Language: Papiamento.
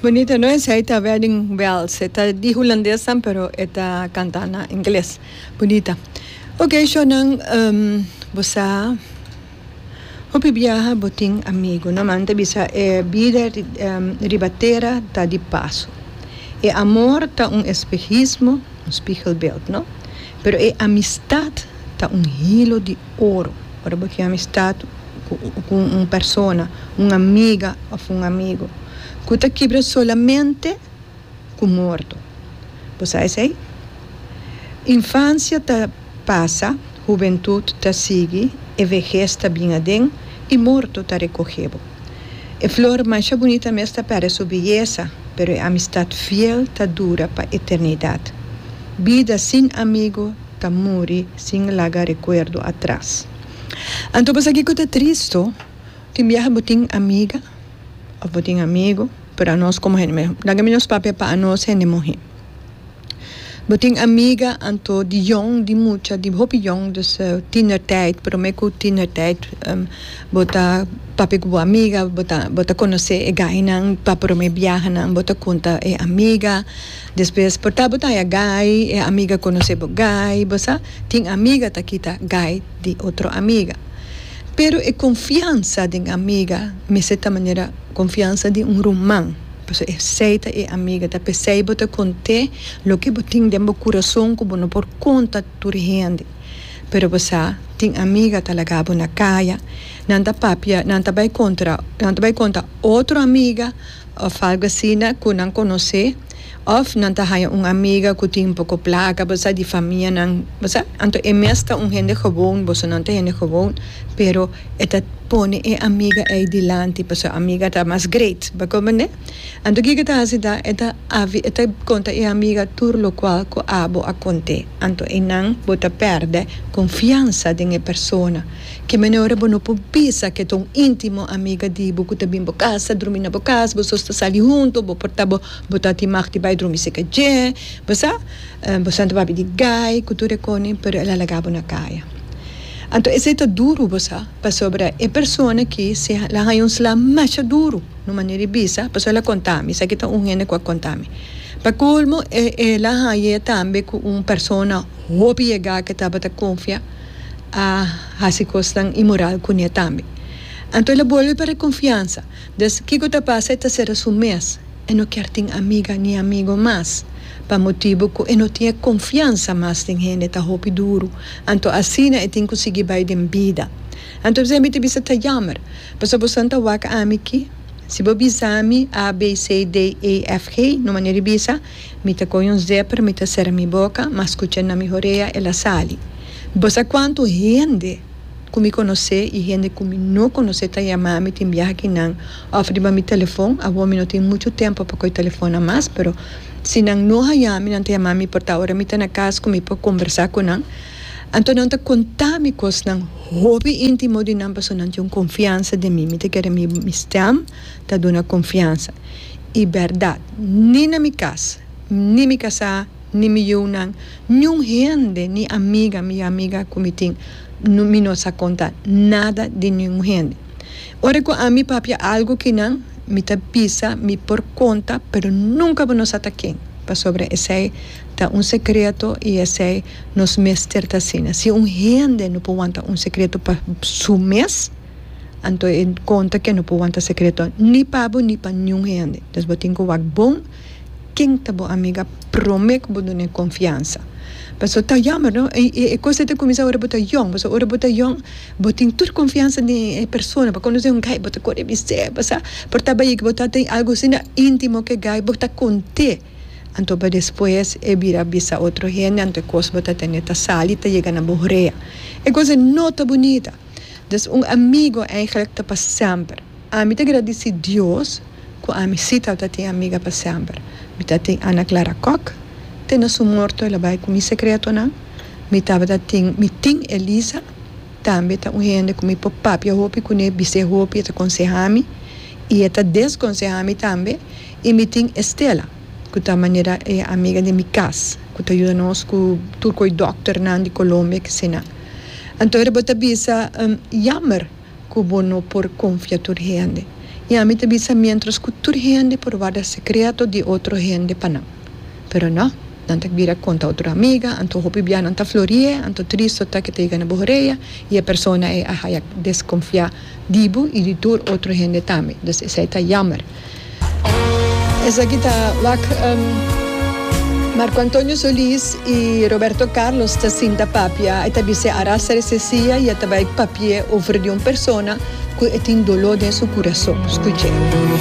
Bonito no esei ta wedding bells e ta di hulandes tam pero e ta canta na ingles bonita ok shownan um, bo sa hopi biaha bo tin amigo no man ta bisa e bida riba tera ta di paso e amor ta un espejismo un spiegelbeeld no pero e amistad ta un hilo di Oro, ora bo tin amistad cu un persona, un amiga of un amigo cu ta kibra solamente cu morto. Bo sa esey? Infancia ta pasa, hubentud ta sigui, e vehez ta bin aden y morto ta recoge bo. E flor masha bunita mes ta perde su beyeza, pero e amistad fiel ta dura pa eternidad. Bida sin amigo Ta muri sin laga rekuerdo atras. Anto bo sa kiko ta tristo? Tin biaha bo tin amiga òf bo tin amigu, pero anos komo hende muhé, laga mi nos papia pa anos hende muhé. Bo tin amiga anto di yòn, di mucha, di hopi yòn dus tinertèit, promé ku tinertèit bo ta papia ku bo amiga, bo ta konosé e gainan pa promé biahanan, bo ta kunta e amiga. Despues por ta bo ta haya guy e amiga conoce bo guy bo sa tin amiga ta kita guy di otro amiga pero e confiansa den amiga mester ta manera confiansa di un ruman pasobra esey ta e amiga ta pesey bo ta conte loke bo tin den bo curason cu bo no por conta tur hende pero bo sa tin amiga ta laga bo na caya nan ta papia nan ta bay contra nan ta bay conta otro amiga òf algu asina ku nan konosé, òf nan ta haña un amiga ku tin poko plaka, bo sa, di famianan, bo sa. Anto e mes ta un hende gewoon, boso nan ta hende gewoon, pero e ta pone e amiga ei dilanti pasobra e amiga ta mas great. Bo a komprendé? Anto kiko e ta hasi ta e ta e ta konta e amiga tur lokual ku abo a kont'é. Anto einan bo ta pèrdè konfiansa den e persona. Ki manera bo no por bisa ke ta un intimo amiga di bo ku ta bin bo kas, ta drumi na bo kas, bo sos ta sali hunto, bo porta bo, bo ta tin mag di bai drumi seka dje, bo sa, bo santa papia di gai ku tur e koni, pero el a laga bo na kaya. Anto esei ta duru, bo sa, pasobra e persona aki si el a haña un sla masha duru, no manera di bisa, pasobra el a konta mi, esaki ta un hende ku a konta mi. Pa kolmo, el a haña tambe ku un persona hopi yega ke tabata konfia. a hasi kosnan imoral kuné tambe. Anto el a bolbe pa e konfiansa. Des kiko ta pasa? E ta sera su mes. E no kier tin amiga ni amigo mas, pa motibu ku e no tin e konfiansa mas den hende. Ta hopi duru. Anto asina e tin ku sigui bai den bida. Anto esei mi ta bisa, Ta yammer, pasobra bo san ta wak ami ki. Si bo bisa mi, A, B, C, D, E, F, G, no manera di bisa. Mi ta coge un zepper mi ta cera mi boca ma scucha na mi horea el a sali. Bo sa cuanto hende cu mi conoce y hende cu mi no conoce ta yama mi tin biaha ki nan of riba mi telefon, awor mi no tin mucho tempo pa coge telefonnan mas pero si nan no haya mi nan ta yama mi por ta ora mi ta na cas cu mi por conversa cu nan anto nan ta conta mi cosnan hopi intimo di nan pasobra nan tin un confiansa den mi, mi ta kere mi stem. ta duna konfiansa i bèrdat. Ni na mi kas, ni mi kasá, ni mi yiunan, niun hende ni amiga mi amiga ku mi tin, mi no sa konta nada di niun hende. Ora ku ami papia algu kinan, mi ta bisa mi por konta, pero nunka bo no sa ta ken, pasobra esei ta un sekreto i esei nos mester ta asina. Si un hende no por wanta un sekreto pa su mes. Anto e konta ke no por wanta sekreto ni pa bo ni pa niun hende. Des bo tin ku wak bon ken ta bo amiga promé ku bo duna e konfiansa. Paso ta yamber no, e e kos ei ta kuminsá ora bo ta yòn, paso ora bo ta yòn bo tin tur konfiansa den e persona, bo konosé un gai bo ta kore bis'é pasá, por ta bai bo ta tin algu asina íntimo ku e gai bo ta kont'é, anto pa despues e bira bisa otro hende anto e kos bo ta tene ta sali ta yega na bo hrea. E kos ei no ta bunita. Des un amigo eigenlijk ta pa semper. Ami ta gradisi Dios cu ami si ta ta tin amiga pa semper. Mi ta tin Anna Clara Kock, te na su morto el a bay cu mi secretonan. Mi tabata tin mi tin Elisa, tambe ta un hende cu mi por papia hopi cu ne, bis'e hopi, e ta consehami y e ta desconsehami tambe. Y mi tin Estela. ku ta manera e amiga den mi kas ku ta yuda nos ku tur koi dòkternan di Colombia kesina. Anto ora bo ta bisa yammer ku bo no por konfia tur hende. I ami ta bisa miéntras ku tur hende por warda sekreto di otro hende pa nan. Pero no, nan ta bira konta otro amiga, anto hopi bianan ta flori'é, anto tristo ta ke ta yega na bo horea i e persona ei a haya deskonfiá. Di bo y di tur otro hende tambe. Dus esai ta yammer. Esaki ta wak Marco Antonio Solis y Roberto Carlos ta sinta papia e ta bis'e a rasa de se sia y e ta bay papi'e over di un persona cu e tin dolo den su curason. Scuch'e.